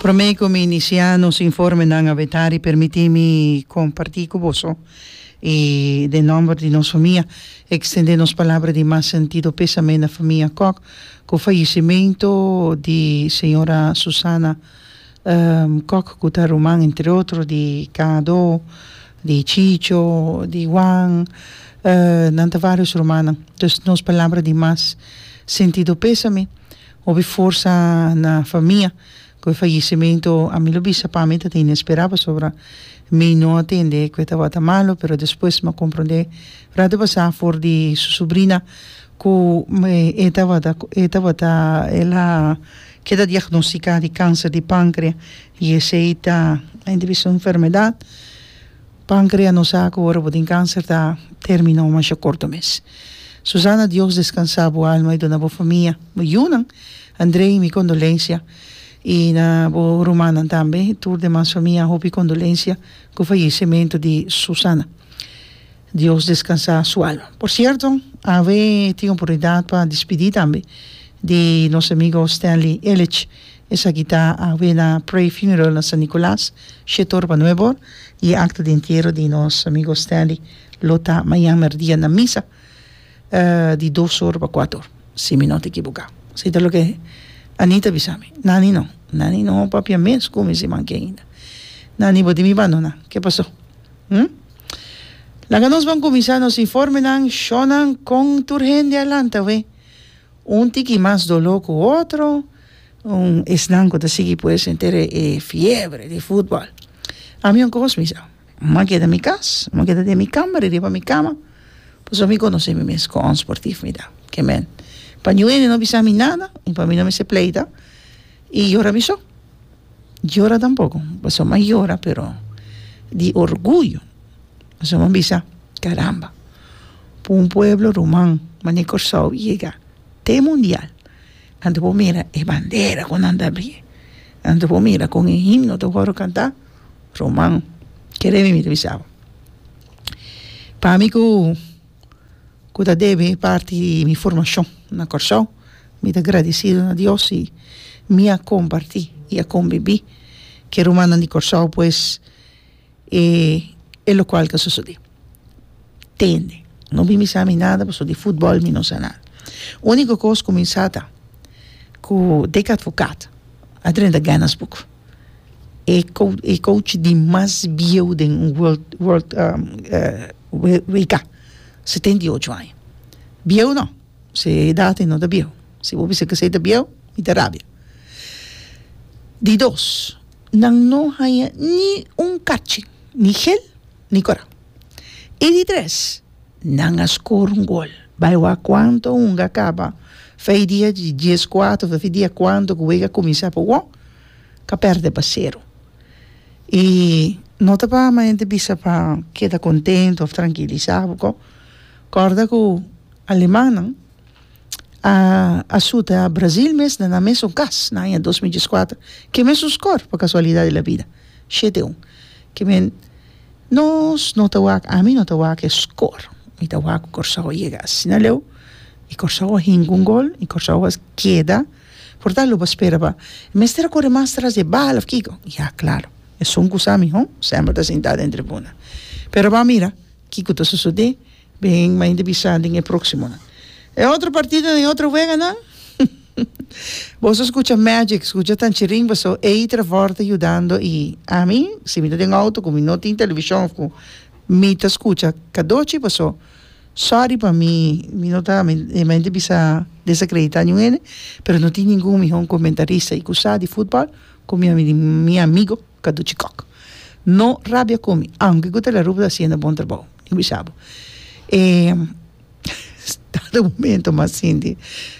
Prome ku mi inisiá nos informenan a Betari permití mi kompartí ku boso i den nòmber di nos famia ekstendé nos palabra di mas sentido pesamé na famia Kok ku fayesimentu di señora Susana Kok ku ta ruman entre otro di Kado, di Chicho, di Juan, nan ta varios rumannan. Dus nos palabra di mas sentido pesamé. Hopi forsa na famia cu e fallecimento a mi lo bisa pa mi ta tin e spera pasobra mi no a tende cu e tabata malo pero despues mi a comprende ora ta pasa for di su subrina cu e tabata e tabata el a keda diagnostica di cancer di pancrea y esey ta enta bisa un enfermedad. Pancrea no sa cu ora bo tin cancer ta termina o masha corto mes. Susana Dios descansa bo alma y duna bo famia, bo yunan, Andrei mi condolencia y na bo rumannan tambe y tur demas famia hopi condolencia cu fallecemento di Susana. Dios descansa su alma. Por cierto AV tin oportunidad pa dispidi tambe di nos amigo Stanley Ellich Esaki ta awe na Pray Funeral na San Nicolas, Shetor pa nueve or, y e acta di entiero di nos amigo Stanley lo ta mañan merdia na misa di dos or pa cuato or, si mi no ta ekiboka. Esei ta loke Anita bisa mi. Nani no, nani no papia mes cu mi si man keinda. Nani bo tin mi bandona, ke paso? Hm? Laga nos ban cuminsa nos informenan, shownan con tur hende a lanta awe, un tiki mas dolo cu otro. Un esnan ku ta sigui pue sentere e fiebre di futbòl. Ami un kos mi sa, M'en a keda mi kas, m'en a keda den mi kamba, ririba mi kama, pasobra mi konosé mi mes kon sportif mi ta. Ke men, pa New Ene no bisa mi nada i pa mi no mester pleita i yora mi so. Yora tampoko, pasobra m'en a yora pero di orguyo, pasobra m'en a bisa, Karamba, p'un pueblo ruman mane Kòrsou yega te mundial. Anto bo mira e bandera ku nan ta bri, anto bo mira kon e himno ta wòrdu kantá, ruman, kere mi mi ta bisa bo. Pa mi ku ku ta debe e parti di mi formashon na Kòrsou, mi ta gradisidu na Dios si mi a kompartí i a kombibí ku e rumannan di Kòrsou, pues. e e lokual ta sosodé tende no bin bisa mi nada pasobra di futbòl mi no sa nada úniko kos ku mi sa ta ku dek atvokat a drenta gènnas buk e kou- e kouchi di mas bieu den un wòrd wòrd WK setenta i ocho aña bieu nò se e edat ei no ta bieu si bo bisa kesei ta bieu mi ta rabia di dos Nan no haña ni un kachi, ni gel, ni kora. I di tres, nan a skor un gol. Bai wak kuantu hunga a kaba, fei dia di dies kuatu, fei dia kuantu ku wega a kuminsá pa wou, ka pèrdè pa seru. I no ta pa ama hende ta bisa pa keda kontentu òf trankilisá, kòrda ku alemannan. a asuta Brazil mes na nan mesun kas na aña dos mil dieskuater ke mesun skor pa kasualidat di la bida shete un ke men nos no ta wak ami no ta wak e skor mi ta wak ku Kòrsou a yega asina leu i Kòrsou a hinka un gol i Kòrsou a keda por tando bo a spera pa e mester a kore mas tras di e bal òf kiko ya klaro esun kusami ho semper ta sinta den tribuna pero bo a mira kiko ta susudé Bin mainta bisa den e proksimonan. E otro partido den e otro weganan? Boso a skucha magic, skucha tanchirin paso ei Trevor ta yudando i ami si mi ta den outo ku mi no tin televishon òf ku mi ta skucha kadochi paso sòri pa mi mi no ta mi mainta bisa desakreditá niun hende pero no tin ningun mihó comentarista i ku sa di futbòl ku mi ami mi amigo. Kadu chikòk. No rabia ku mi, aunke Gutelarup ta hasiendo bon trabou. Mi bisa bo. E stado momento mas sinti.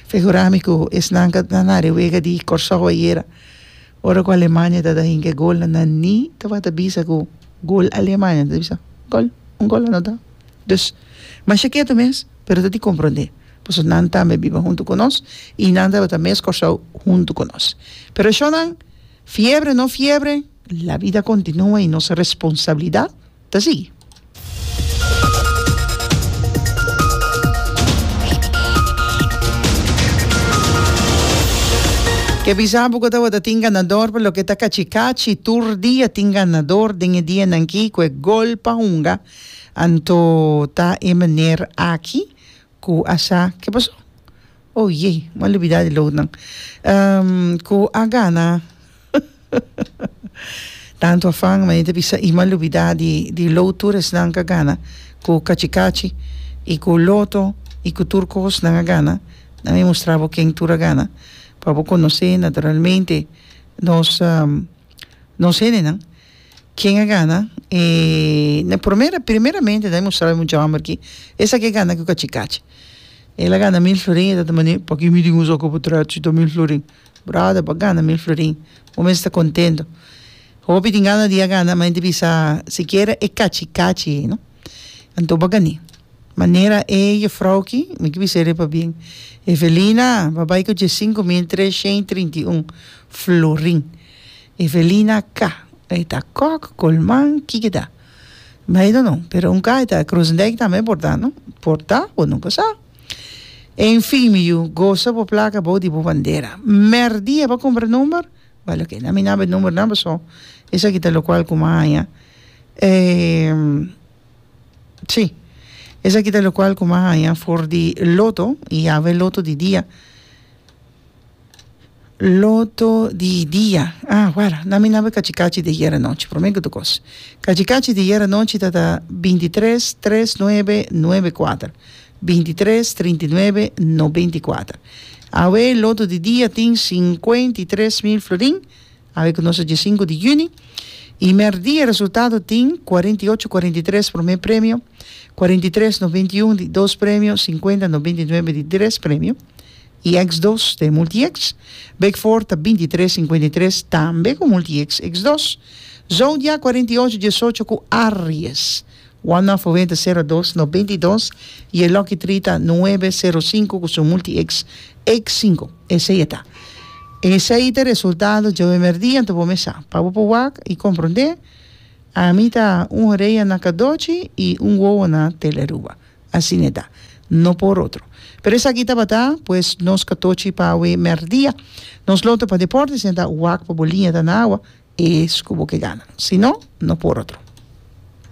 Figurá mi ku esnan ku a ta na rewega di Kòrsou ayera, ora ku Alemania a tabata hink'e golnan, nan ni tabata bisa ku gol Alemania. Nan ta bisa, gòl, un gòl anotá. Dus, masha ketu mes, pero ta di komprondé. Pasobra nan tambe a biba huntu ku nos i nan tabata mes Kòrsou huntu ku nos. Pero shònan Fiebre no fiebre, la vida continua y nos responsabilidad ta sigui. Ke bisa Bogota wata tin ganador pa loke ta kachi kachi tur dia tin ganador den e dianan aki ku e gol pa hunga anto ta e maner aki. Ku a sa ke pasó? Oh yey, m'ha lubidá di loutnan. Ehm, ku a gana. Tantu afan, mane ta bisa i m'ha lubidá di di lout tur esnan k'a gana ku kachikachi i ku loto i ku tur kos nan a gana. Nan mi mustra bo ken tur a gana pa bo konosé naturalmente nos nos hendenan. Ken a gana e na promera primeramente dai mustraba e mucha homber ki esaki a gana ku kachi kachi el a gana mil florin e ta ta mane paki mi tin usa oko pu tròt si ta mil florin brother bo a gana mil florin bo mes ta contento hopi tin gana di a gana ma hende bisa sikiera e kachi kachi ei no anto bo a gani manera e gefrou ki mi ta biseri pabien Evelina bo a bai ku dies sinku mil treshent trinta i un florin Evelina K, E ta Kòk, Kolman, Kikida. I don't know, pero un ka e ta Kroosendijk tambe por ta no? Por ta, bo no por sa. En fin, mi yu, gosa bo plaka abou di bo bandera. Mèrdia bo a kumpra number? Bale oke, nan mina bo e numbernan paso esaki ta lokual ku mi a haña. E, si, esaki ta lokual ku mi a haña for di loto i ave loto di dia. Loto di dia ah wara na mi na be kachi kachi di ayer anochi prome ku tukos kachi kachi di ayer anochi ta ta binti tres tres nuebe nuebe kuater binti tres trinti nuebe nobenti kuater awe loto di dia tin sinkuenti tres mil florin awe ku nos a dia sinku di yüni i merdia resultado tin kuarenti ocho kuarenti tres prome premio kuarenti tres nobenti un di dos premio sinkuenta nobenti nuebe di tres premio i X dos ta e multi-X. Big Four ta binti tres sinkuenta i tres, tambe ku multi-X X dos. Zodiak kuarenta i ocho diesocho ku Aries. One of Owenta sero dos nobenta i dos i e Lucky Tree ta nuebe sero sinku ku su multi-X X sinku. Esei e ta. Esei ta resultado djobe merdía anto bo mesa pa bo por wak i komprondé. Ami ta un horea na Kadochi i un wowo na Tele Aruba. Asina e ta. No por otro. Pero esaki tabata, pues nos ka tochi pa awe mèrdia. Nos lo ta pa deporte si nan ta wak pa bo liña ta na awa, es ku bo ke gana. Si no, no por otro.